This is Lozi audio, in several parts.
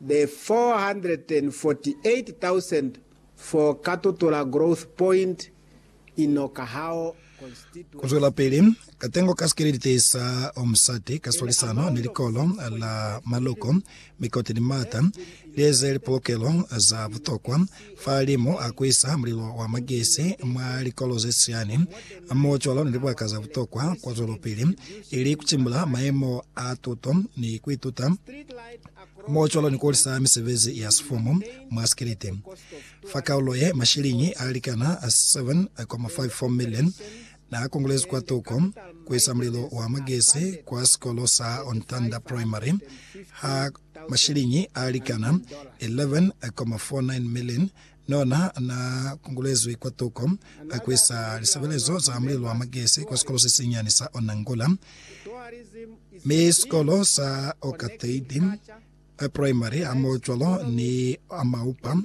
the 448,000 for Katutura Growth Point in Okahao Constituency. Kuzwelapili, katengo ka sikelelite sa Omsati ka swalisano ni likolo la maloko, mikote ni maata, lieze lipolokelo za butokwa, Fahalimu a kuisa mulilo wa magesi mwa likolo ze siani, mo cwalo ni libaka za butokwa kwa zwelopili, ili kucimbula mayemo a tuto ni kuituta, mo cwalo ni kuhulisa misebezi ya sifumu mwa sikiliti. Fa kaulo ye, mashiliñi a likana 7.54 million Na kongolezi kwa toko ku isa mulelo wa magesi kwa sikolo sa On Thunder Primary ha mashiliñi a likana 11,49 million nona na kongolezwi kwa toko ku isa lisebelezo za mulelo wa magesi kwa sikolo se sinyani sa Onangula mi sikolo sa Okateidi Primary hamoho cwalo ni Amaupa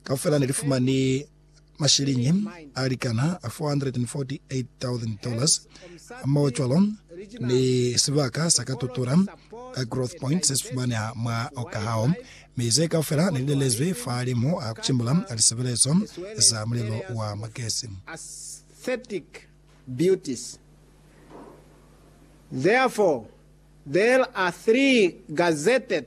Kaufela ne li fumani mashiliñi a likana $448,000, hamohocwalo ni sibaka sa ka tutula ka Growth Point se si fumaneha mwa Okahao, mi ze kaufela ne li lelezwi fahalimu a ku cimbula lisebelezo za mulelo wa magesi. Beauties. Therefore, there are three gazetted.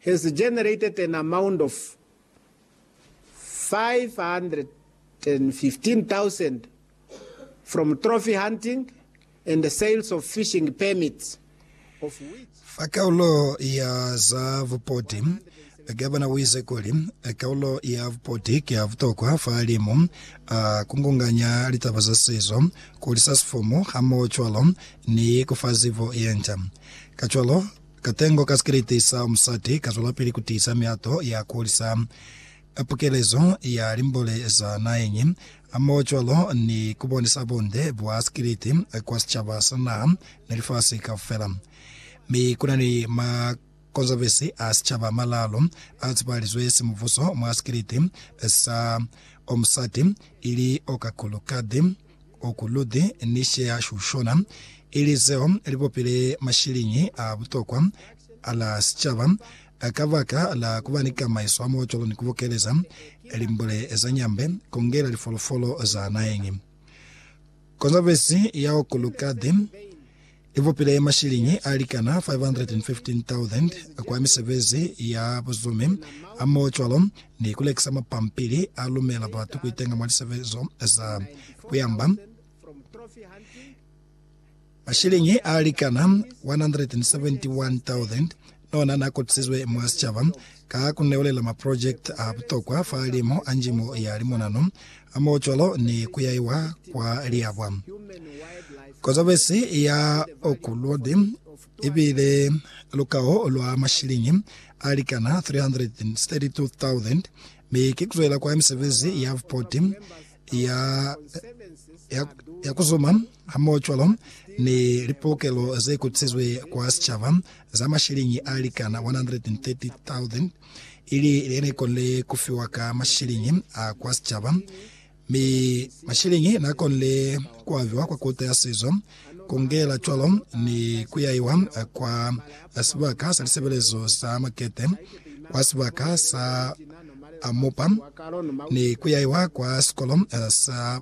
has generated an amount of R515,000 from trophy hunting and sales of fishing permits, of which. Fa kaulo ya za bupoti, Gavana u ize kuli, Kaulo ya bupoti ki ya butokwa fa limu a kungunganya litaba za sizo, ku hulisa sifumu hamoho cwalo ni ku fa zibo ye nca. Kacwalo, Katengo ka sikiliti sa musati kazwelapili kutiisa mihato ya kuhulisa pukelezo ya limbole za naheñi hamohocwalo ni kubonisa bunde bwa sikiliti kwa sicaba sa naha ni lifasi kaufela. Mi kunani makonzavesi a sicaba amalaalu a tsepahalizwe simubuso mwa sikiliti sa omusati, ili okakulu kadi, O kuluti ni sheya shushona, ili zeo li bopile mashiliñi a butokwa a la sicaba. Ka baka la ku ba ni kamaiso hamocwalo ni ku bokeleza limbule za nyambe, kongela lifolofolo za naheñi, konzabezi ya okulukati, Ipupile mashilingi a likana 515,000 kwa misebezi ya buzumi hamohocwalo ni kulekisa mapampili a lumela batu kuitenga mwa lisebezo za kuyamba. Mashilingi a likana 171,000 Nona na kopisizwe mwa sicaba ka ku newelela maprojekiti a butokwa fa limu a njimo ya limonano, hamohocwalo ni ku yaiwa kwa liabwa. Kozabesi ya Oakwood ibile lukao lwa mashiliñi a likana 332,000, mi ki kuzwela kwa misebezi ya bupoti ya, ya, ya kuzuma hamoho cwalo ni lipolokelo ze kutisizwe kwa sicaba za mashilingi a likana 130,000 ili lene konle kufiwa ka mashilingi a kwa sicaba mi mashilingi na konle kuaviwa kwa Kota ya Sizo kungela cwalo ni kuyaiwa kwa sibaka sa lisebelezo sa makete, kwa sibaka sa Amopa, ni kuyaiwa kwa sikolo sa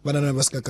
banana ba sikakala.